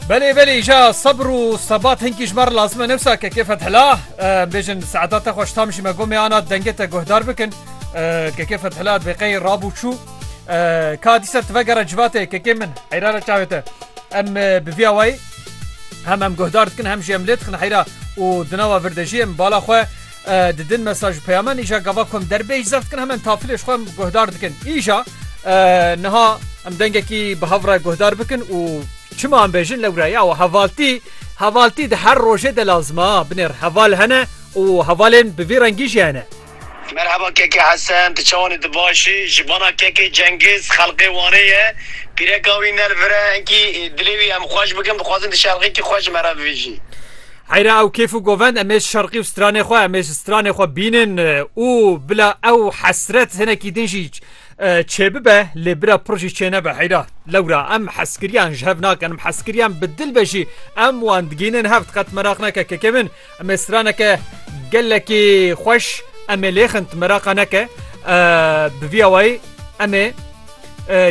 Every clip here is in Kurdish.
Belê belê îja sebr û sebat hinkî ji me re lazim e newsa kekê Fethila bêjin seeta te xweş tam jî me gomê ana dengê te guhdar bikin kekê Fethila dibê qey rabû çû ka dîsa ti vegere civatê kekê min heyra re çavê te em bi vîya wayî hem em guhdar dikin hem jî em lê dixin heyra û di nava vir de jî em bala xwe Di din mesaj ji peyamen îja gava ku em derbêj zeft dikin hemen tafilê ji xwe em guhdar dikin. Îja niha em dengekî bi hev re guhdar bikin û çima em bêjin lewra ya we hevaltî hevaltî di her rojê de lazim a binêr heval hene û hevalên bi vî rengî jî hene. Merheba Keke Hesen, tu çawan î tu baş î? Ji bana Keke Cengiz xelqê Wanê ye, pîreka wî nelvire, hinkî dilê wî em xweş bikin, bixwazin tu şerxekî xwe ji me re bivîjî. Heyra ew kêf û govend em ê şerqî û stranê xwe em ê ji stranê xwe bînin û bila ew hesret hinekî din jî çêbibe lê bira pir jî çênebe heyra lewra em heskiriyan ji hev nakin em heskiriyan bi dil be jî em wan digînin hev diqet meraq neke keke min em ê straneke gelekî xweş em ê lêxin meraqa neke bi vî awayî em ê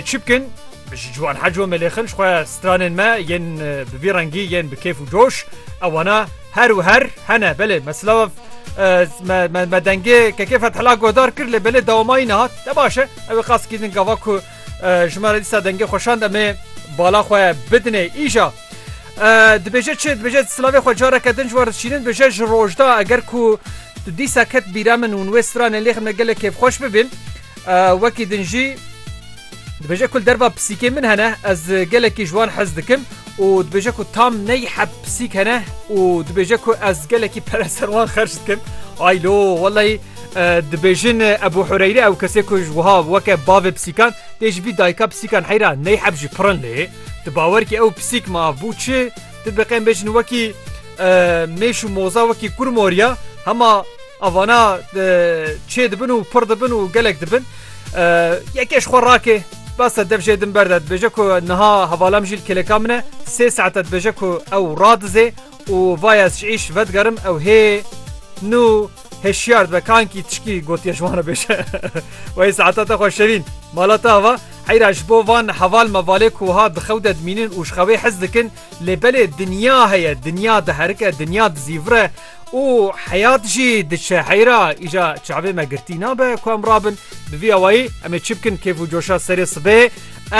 Çi bikin? Ji ciwan heco melêxin ji xwe stranên me yên bi vî rengî yên bi kêf û coş ewana her û her hene belê meslav me dengê kekê fethela guhdar kir lê belê dawamayî nehat te baş e ew ê qas kînin gava ku ji me re dîsa dengê xweşand em ê bala xwe bidinê îja dibêje çi dibêje silavê xwe careke din ji war dişînin bêje ji rojda eger ku tu dîsa ket bîra min û wê stranê lêxin me gelek kêfxweş bibin Wekî din jî dibêje ku li derva pisîkê min hene ez gelekî ji wan hez dikim û dibêje ku tam ney heb pisîk hene û dibêje ku ez gelekî pere ser wan xerç dikim aylo weleyî dibêjin Ebû Hureyre ew kesê ku ji wiha weke bavê pisîkan tê ji bî dayika pisîkan heyra ney heb jî pirin lê di bawer kî ew pisîk ma bû çi tu biqên bêjin wekî mêş û moza wekî kur moriya hema Avana çê dibin û pir dibin û gelek dibin. Yekê ji xwe rakê basa dev jê din berde dibêje ku niha hevala min jî li kêleka min e sê saete dibêje ku ew radizê û vaya ez ji îş vedigerim ew hê nû hêşiyar dibe kankî tişkî gotiye ji wan re bêje wey saeta te xwe şevîn mala te ava heyra ji bo van heval mevalê ku ha di xew de dimînin û ji xewê hez dikin lê belê dinya heye dinya diherike dinya dizîvire û heyat jî diçe heyra îja çavê me girtî nabe ku em rabin bi vî awayî em ê çi bikin kêf û coşa serê sibê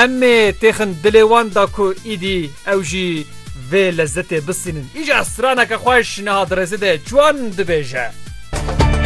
em ê têxin dilê wan da ku îdî ew jî vê lezzetê bisînin îja straneke xweş niha di rêzê de çiwan dibêje.